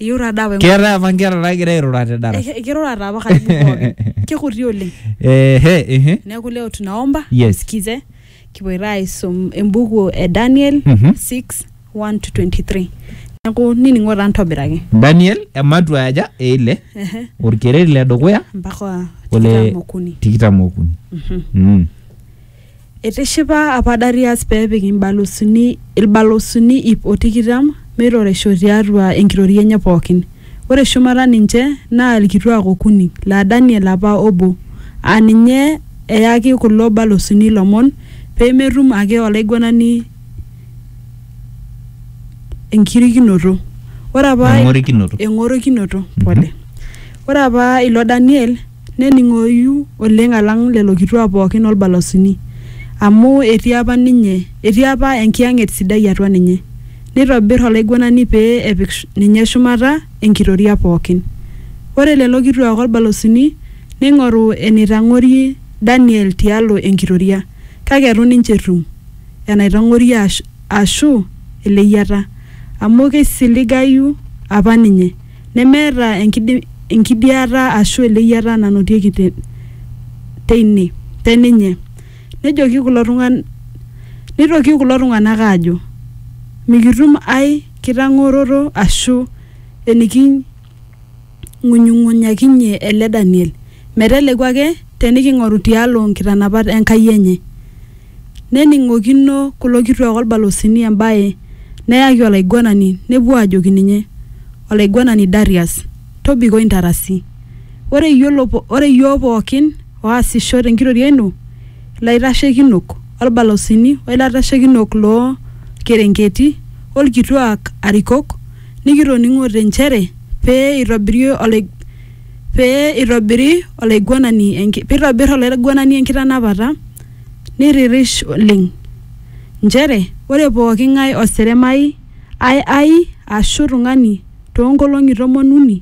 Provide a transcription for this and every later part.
eyieu taa daa apa enkutuk. keetae apa nkera naagira airura te darasa Eh, kirura taa apa karibu pookin kikuti oleng ehe ehe neeku leo tunaomba Yes. msikize kipoito aisum embuku e daniel Mhm. 6 1 to 23 neeku nining'o taa ntobiraki daniel ematua aja eile Ehe, orkereri le dukuya mpaka ole tikitam okuni tikitam okuni Mhm. mm. Eitishipa apa Darius pee epik imbalusuni ilbalusuni iip o tikitam meitoreisho tiatua enkitoria enye pooki. Ore shumata ninche naa ilkituaak okuni, laa Daniel apa obo, aa ninye eyaki kulo balusuni ilomon pee metum ake olaiguanani enkirikinoto. Eng'orikinoto. Ore apa ilo Daniel. Nening'oyu oleng alang lelo kituak pooki o lbalasuni, amu etii apa ninye, etii apa enkiyang'et sidai atua ninye. Neitobir olaiguanani pee epik ninye shumata enkitoria pooki. Ore lelo kituak o lbalasuni neing'oru eneitang'orie Daniel tialo enkitoria, kake eitu ninche etum enaitang'orie aashu eleyiata, amu keisiligayu apa ninye. Nemeeta enkidiata aashu eleyiata nanotieki teine, te ninye. Nejoki kulo tung'ana, neitoki kulo tung'ana aajo, Mikitum ai kitang'oroto aashu eniking'unyung'unyakinyie ele Daniel, meteleku ake teniking'oru tialo nkitanapat e Nkai enye. Nening'okino kulo kituak o lbalosini embae neyaki olaiguanani nepuo aajoki ninye, Olaiguanani Darius, tobiko intarasi. Ore iyiook pooki ooasisho te nkitoria ino, ilaitashekinok, o lbalosini, o ilaitashekinok loo lkerenketi, o lkituaak arikok, nikitoning'ote nchere pee eitobir olaiguanani enkitanapata, Nirrirish oleng. Nchere ore pooki ng'ae oseremai ai ai aashu tung'ani too nkolong'i tomon uni,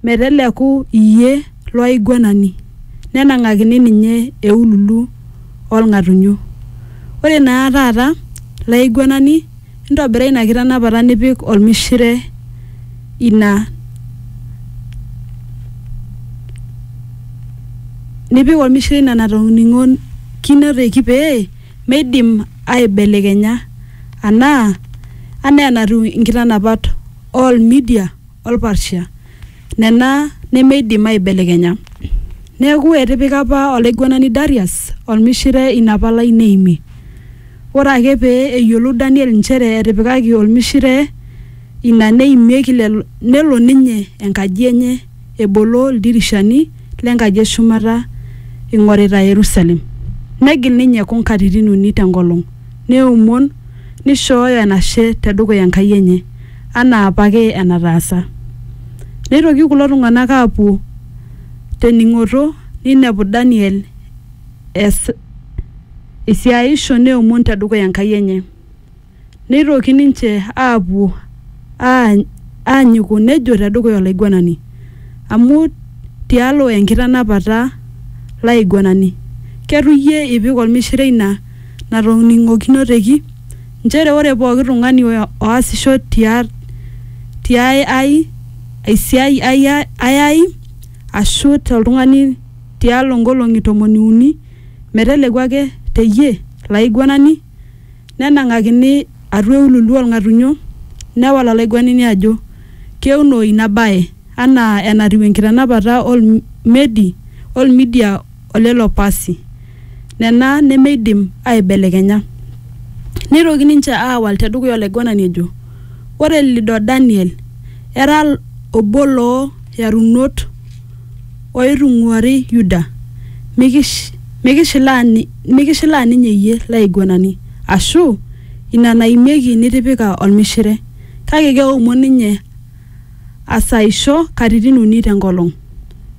meteleku iyie lo aiguanani, nenang'akini ninye eululu oo lng'atunyo. Ore naa taata laiguanani ntobira ina kitanapata nipik olmishire ina nipik olmishire ina natoning'okinoteki pee meidim aibelekenya anaa anaa enatiu nkitanapat oo lmidia. olparsia nena nemeidim aaibelekenya. Neaku, etipika apa olaiguanani Darius olmishire ina palai neimie. Ore ake pee eyiolou Daniel nchere etipikaki olmishire ina neimieki lelo, nelo ninye enkaji enye ebolo ildirishani le nkaji e shumata eing'orita Yerusalem. Negil ninye kung katitin uni te nkolong, neomon neishooyo enashe te dukuya Enkai enye. anaa apake enataasa. Neitoki kulo tung'ana aapuo te ning'oto neinepu Daniel eas esiaisho neomon te dukuya Enkai enye. Neitoki ninche aapuo aanyiku nejo te dukuya olaiguanani, Amu tialo enkitanapata laiguanani, keitu iyie ipik olmishire ina natoning'okinoteki, nchere ore pooki tung'ani oasisho ti ae ai aisiai ayai ashu te ltung'ani tialo ngolong'i tomoni uni meteleku ake te ye laiguanani, nenang'akini atua eululu oo lng'atunyo, newal olaiguanani ajo, Keunoi nabae, anaa enatiu enkitanapata o Lmedi o Lmidia o. o lelo pasi, nena nemeidim aaibelekenya. Neitoki ninche aawal te dukuya olaiguanani ejo, Ore lido Daniel era obo loo yarunot ooitung'uari Yuda, mikishilaa ninye iyie, laiguanani, ashu ina naimieki nitipika olmishire. Kake keomon ninye asaisho katitin uni te nkolong.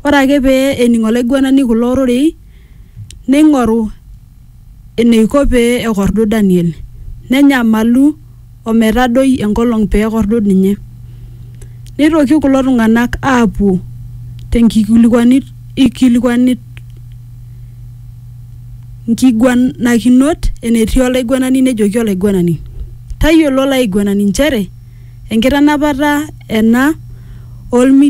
Ore ake pee ening olaiguanani kulo rorei, neing'oru eneiko pee ekordu Daniel. Nenyamalu o metadoi enkolong pee ekordu ninye. Neitoki kulo tung'ana aapuo te nkikilikuanit. nkiguanakinot enetii olaiguanani nejoki olaiguanani, Tayiolo olaiguanani nchere enkitanapata ena o lmidian oing'uaa Misri.